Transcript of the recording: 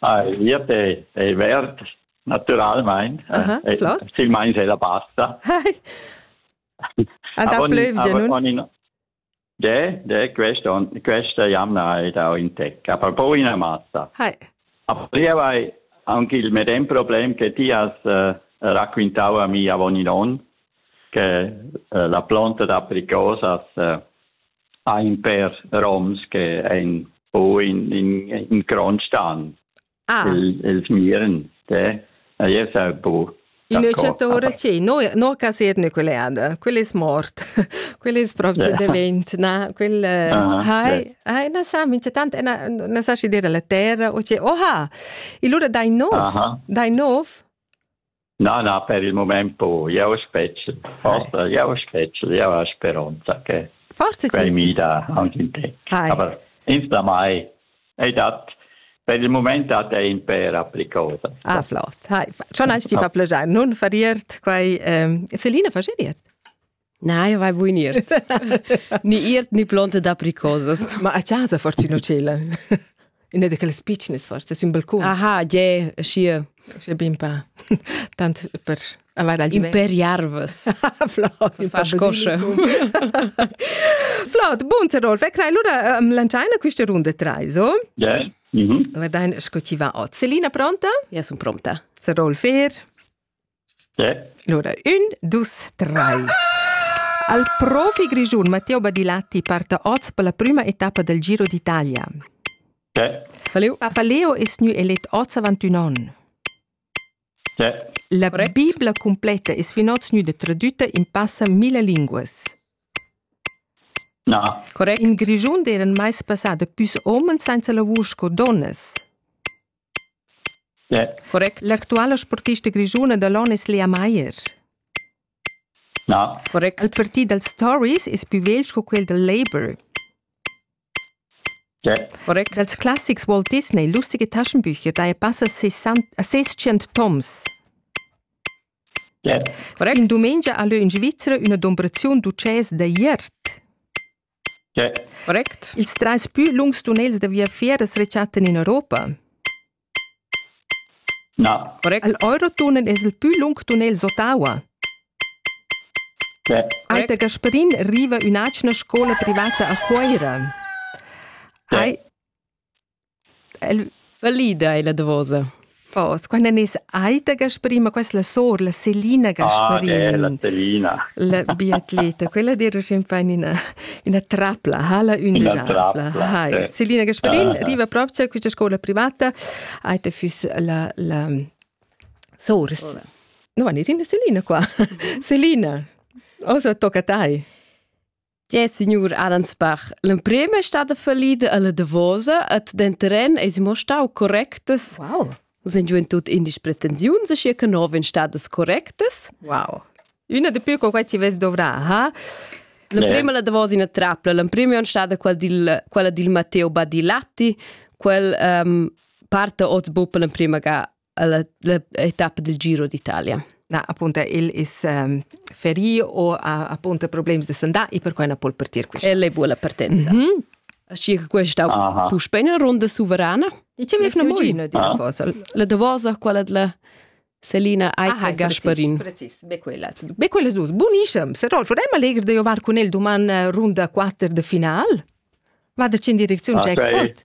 Ai, glieud ei, ei verd, naturalmein. Eh, flot. Silmeins ei la pasta. A da plövgia, nun? De, de, questa, questa jamna hai dau in tec, aber poi una massa. Hi. Aber io hai anche il medem problem che ti has uh, raccontau a mi avon in onn, che uh, la planta d'apricosas uh, ha in pèr roms che ein o in in in cronstan ah. il il miren te e io sa bu L'invecchiatore ci noi no casir nucleare quello è morto quello è proprio divent na quel hai hai na sa mi c'è tante na na sa ci dire la terra o c'è oh ha il loro dai nov dai nov Na, na, per il moment po. Jeu spetgel. Forsa, jeu spetgel, jeu ha speronza che Forse quel mida anche in te. Hai. Aber insomma, ei dat per il moment dat ei in per applicosa. Ah, flott. Hai. Schon als ti fa plegiar, nun fariert quai. Ähm, Selina, fascheriert? Nein, vai buin iert. ni iert ni plonte d'apricosas. Ma a casa fortuna cela. Una di quelles piccines forse, su un balcon. Aha, je, schi. Schi bin pa. Tant per avere al givet. Per jarvas. Flot, far scosce. Flot, bun, Rodolf. E crai allora um, lanciaina questa runda trai, so? Yeah. Mm -hmm. Guardain sco ci va oz. Selina pronta? Ja, sun pronta. Se Rolf er. Lura ün, dus, trais. Al profi grischun Matteo Badilatti parta oz per la prüma etappa del Giro d'Italia. Faleo. Papa Leo es gnü elet oz avant ün on. La Bibla completa es fin oz gnüda tradüta in passa mille linguas. Na. Correct. In Grischun d'eiran meis passà da püs homens sainza lavur sco donnas. Correct. L'actuala sportista grischuna da l'on es Lea Maier. Na. Correct. Il parti dals Tories es pü vegl sco quel dal Labour. Correct. Dals classics Walt Disney lustige Taschenbücher daja passa sesschient toms. Correct. In dumengia ha lö in Svizra üna dombraziun d'utschès da iert. Correct. Ils trais pü lungs tunnels da viafier as rechattan in Europa? Na. Correct. Il Eurotunnel es il pü lung tunnel d'Ottawa? Aita Gasparin riva ün'atgna scoula privata a Cuoira. Ai El valida ella davosa. Fos, quando nis Aita Gasparina, questa la sor, la Selina Gasparin. Ah, eh, la Selina. La biatleta, quella dir champagne ina, ina trapla, hala ün ina trapla. Hai. Eh. Selina Gasparin ah. arriva proprio a questa scuola privata, Aita fus la, la sors. No, va nirina Selina qua. Selina, osa tocca tai. Ja, signur Ahrensbach, l'emprim è stata fallida alla Davosa et den terren es mo stau correctas. Wow. Sind ju in tut indisch pretensiuns e che nov in stadas correctas? Wow. Una de più con quai ci ves dovrà, ha? L'emprima la Davosa in trapla, l'emprima è stata quella dil, quella dil Matteo Badilatti, quel um, parte oz bupa l'emprima ga l'etappa del Giro d'Italia. Na, appunto, il is um, ferì o ha appunto problems da sandà e perquai na può partir questa. El è buona partenza. Mm -hmm. Aschi che questa puspei una ronda suverana. E ce vefna molina di Davos. La Davosa, quella della Selina Aika Gasparin. Precis, be quella. Be quelle dus. Buonissem. Se Rolf, è allegro di ovar con el domani eh, runda 4 de final. Vado in direzione ah, cioè, Jackpot.